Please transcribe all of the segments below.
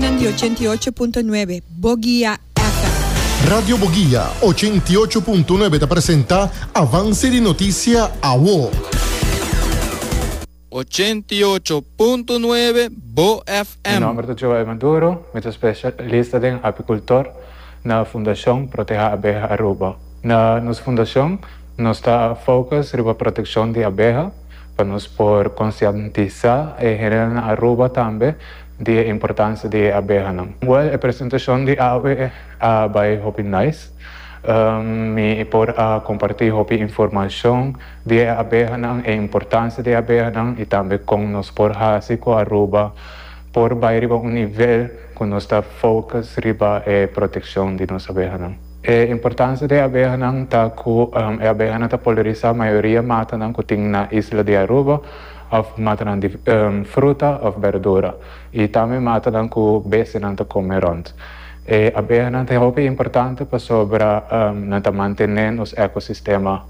Nan di ochenta i ocho punto nuebe, Bogia FM. Radio Bogia ochenta i ocho punto nuebe ta presenta Avance di Noticia Awo. Ochenta i ocho punto nuebe, Bo Mi FM. nomber ta Joel Maduro, mi ta specialista den apicultor na Fundacion Proteha Abeha Aruba. Na nos fundacion nos ta focus riba proteccion di abeha pa nos por concientisa e generanan Aruba tambe di e importancia di e abehanan. Well e presentacion di awe a bay hopi nice. Mi por a comparti hopi informacion di e abehanan, e importancia di e abehanan y tambe con nos por haci cu Aruba por bay riba un nivel cu nos ta focus riba e proteccion di nos abehanan. E importancia di e abehanan ta cu e abehanan ta polariza mayoria matanan cu tin na isla di Aruba. òf matanan di fruta òf berdura i tambe matanan ku bestianan ta kome rònt. E abehanan ta hopi importante pasobra nan ta mantené nos ekosistema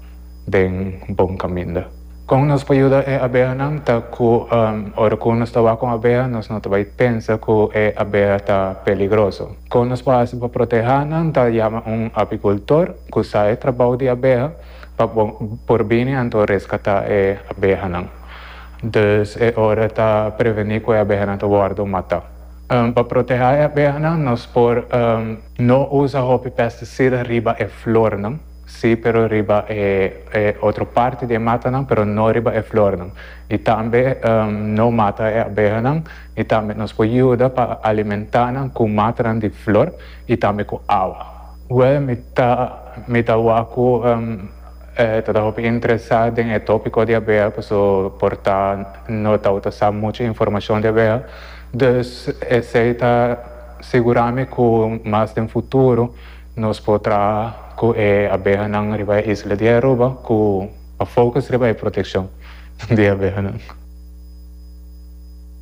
den bon kaminda. Kon nos por yuda e abehanan ta ku ora ku nos ta wak un abeha nos no ta bai pensa ku e abeha ta peligroso. Kon nos por hasi pa protehá nan ta yama un apikultor ku sa e trabou di abeha. pa bo por bini anto reskatá e abehanan. Dus e ora ta prevení ku e abehanan ta wòrdu matá. Pa protehá e abehanan nos por no usa hopi pesticida riba e flornan, sí pero riba e otro parti di e matanan pero no riba e flornan. I tambe no mata e abehanan i tambe nos por yuda pa alimentá nan ku matanan di flor i tambe ku awa. Well mi ta mi ta waku e ta ta hopi interesá den e tópiko diabea paso por ta no ta ta sa muchu informashon diabea dus esei ta sigurá mi ku mas den futuro nos por traha ku e abehanan riba e isla di Aruba ku a fokus riba e protekshon di abehanan.